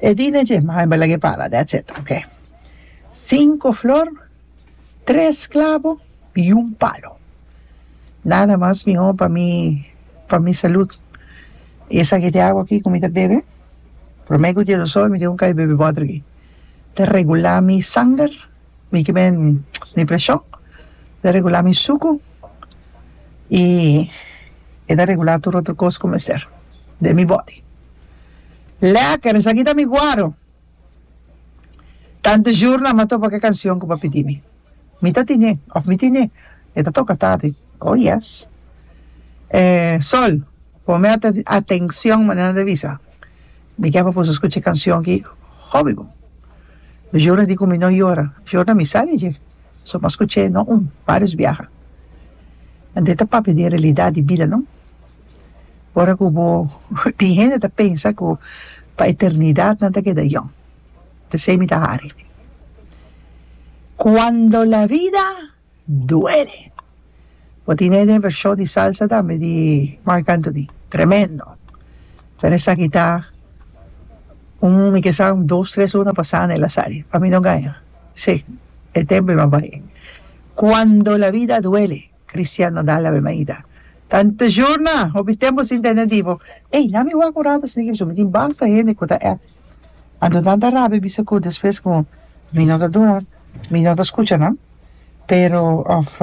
E dina dje mi haña balak e pala, that's it, ok. Sinku flor, tres klabo i un palo. Nada mas mihó pa mi, pa mi salut. I e saki di awa aki ku mi ta bebe, promé ku dia dos ora mi tin ku kai bebe bòter aki. Ta regulá mi sanger, mi ke men, mi preshon, ta regulá mi suku i e ta regulá tur otro kos ku mester den mi bòdi. Lekker! Esaki ta mi guaro! Tante jurna m'a topa ku e kanshon ku bo a pidi mi. Mi ta tine, òf mi tine, e ta toka tati. Oh, yes! E Sol, pone ate, atenshon manera nan ta bisa. Mi ke pa pusu skucha e kanshon aki hopi bo. Mi jurna di ku mi no yora. Jurna mi sa di dje, so m'a skucha e, no un, vários biaha. Ante ta papia di e realidat di bida, no? ora ku bo tin hende ta pensa ku pa eternidad nan ta keda yòn p'esei mi ta hari cuando la vida duele bo tin hende e vershon di salsa tambe di Marc Anthony tremendo pero esaki ta un mi ke sa un dos tres luna pasá nan e la sali pa mi no gana si e tempu e maba cuando la vida duele Christian no dal labe maida. Tante jorna, hopi tempo sin tene di bo. Ey, na mi wak un rato esaki biso. Mi tin basta hende cu ta app. A duna tanta rabia bisa cu despues cu mi no ta duna, mi no ta scucha nan. Pero of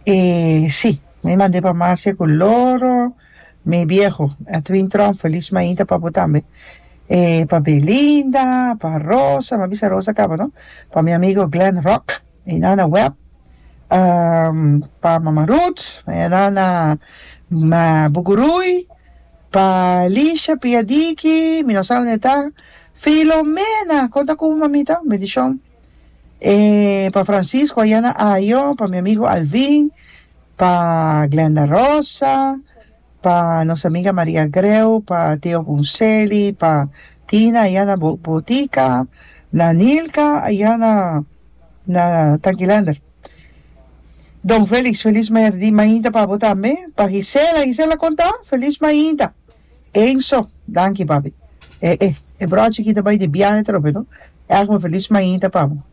e si, mi mand'e pa Marcia cu loro, mi bieho, Edwin Trom, feliz maida pa bo tambe. E pa Belinda, pa Rosa, mi a bisa Rosa caba no, pa mi amigo Glen Rock. E na na web pa Mama Ruth, e na na Bugurui pa Lisha Piadiki, mi no sa unda e ta, Filomena, kon ta ku mamita? Un bendishon. E pa Francisco Ayana Ayo, pa mi amigo Alvin, pa Glenda Rosa, Pa nos amiga Maria Greu, pa Theo Ponselli, pa Tina allá na bo botica, na Nilka allá na na Tankilander. Don Felix, feliz maerdi mainta pa bo tambe. Pa Gisela, Gisela conta, feliz mainta. Enzo, danki papi. E e e brochi kita bai di biahe trobe no. Erg un feliz mainta pa bo.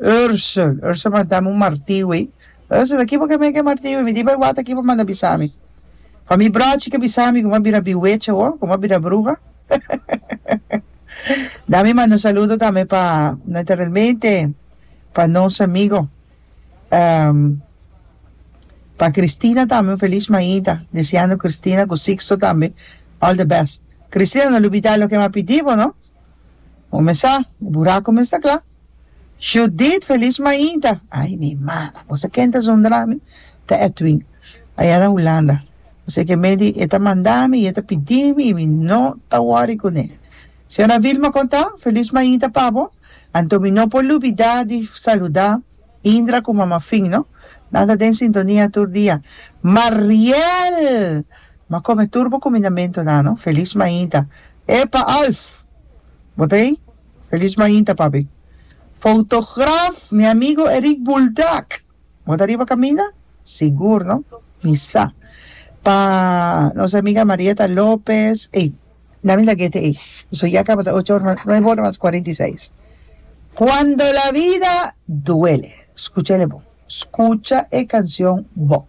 Ursel, Ursel manda mi un martiu ey. Ursel, Aki bo ke meken martiu ey? Mi di bo e wata aki bo manda bisa mi. Pa mi brochi ke bisa mi ku mi a bira biwecha awo, ku mi a bira bruha. Da mi manda un saludo tambe pa naturalmente pa nos amigo pa Cristina tambe un feliz mainta deseando Cristina ku Sixto tambe all the best. Cristina no lo bida loke mi a pidi bo no. Bo mester sa, bo buraco mester cla. Judith Feliz Mainta, ay mi mama, bo sa ken ta zon drami? Ta Edwin, aya na Hulanda. Así que medi e ta manda mi y e ta pidi mi y mi no ta worry cu ne. Señora Vilma con ta, Feliz Mainta pa bo, anto mi no por lubida di saluda Indra cu mama Finn no, nan ta den sintonia tur dia. Mariel! M'a come tur bo cuminamentonan no, Feliz Mainta. Epa Alf! Bo ta ei? Feliz mainta, papi. Fotograaf, mi amigo Eric Buldak! Bo ta riba kaminda? Sigur, no? Mi sa. Pa nos amiga Marietta Lopez, ei, na mi lag'ete ei. Su yaka bo ta ocho ora mas, nuebe ora mas cuarenta y seis. Cuando la vida duele. Scucha el e bo. Scucha e cancion bo.